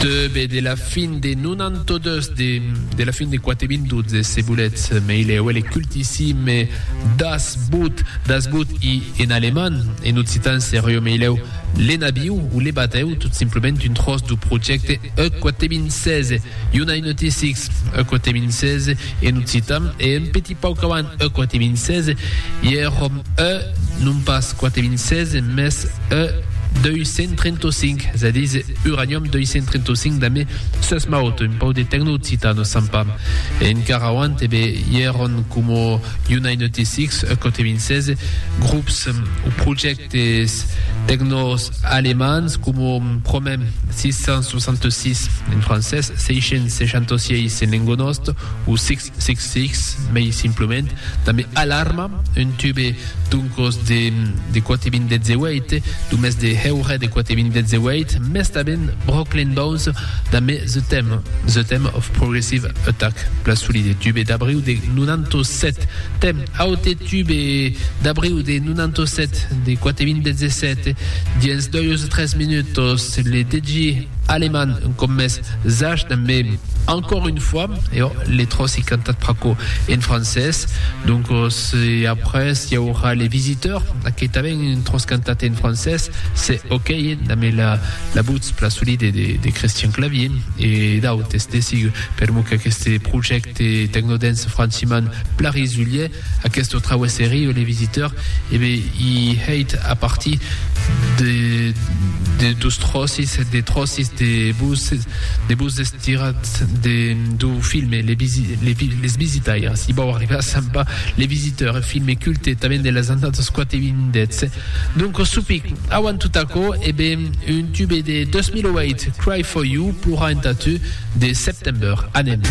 Teube de la fin de 92 de la fin de quate vin 12 se boletz mei lèu e le cultissime das boot das boot i en aleman en occitan serió mei lèu l'enabiu o le batèu tot simplement un tròç du projècte e quate vin 16. Unaineutisics, eth quate mincés en occitan, e un petit pauc avant eth quate mincés, i er òm ë, non pas quate mincés, mès ë 235, es a díser uranium 235 damb sas maut, un pauc de tecnooccitan o sant pas. E encara auant, ebe, i èron coma unaineutisics, eth quate mincés, grops o projèctes. Des tecnòs alemands coma Promem 666, en francés, 666 en lengo nòst, o 666 mei simplament, tanben alarma, un tube doncos de 4.018, lo mes de heure de 4.018, mes tanben Brooklyn Bones damb The Theme, The Theme of Progressive Attack, plan solit, tube d'abriu de 97, Theme, Aute tube d'abriu de 97 de Quatevin Bezzesèt dins doius o tres minutos le degi Aleman com mès zach dambe Encore une fois e ò le tròci cantat pr'aquò en francés doncos e après i aurà le visiteur que tanben un tròç cantat en francés se ok dambe la votz plasolide de Christian Clavier e d'autes de sigur. Per lo qu'aqueste projècte Tecnodens Franciman Plary Zulie, aquesto trauè serieu les visiteurs, e be i hèit a partir de de dos tròcis, de tròcis de bus, de bus estirats de do filme les visi les vi les visitaires, i bau arribar a Sampa les visiteurs, filme culte tanben de las annadas quate vindes. Doncos supic, auant tot aquò, e ben, un tube de 2008, Cry For You, Plorar entà tu, de September. Anem.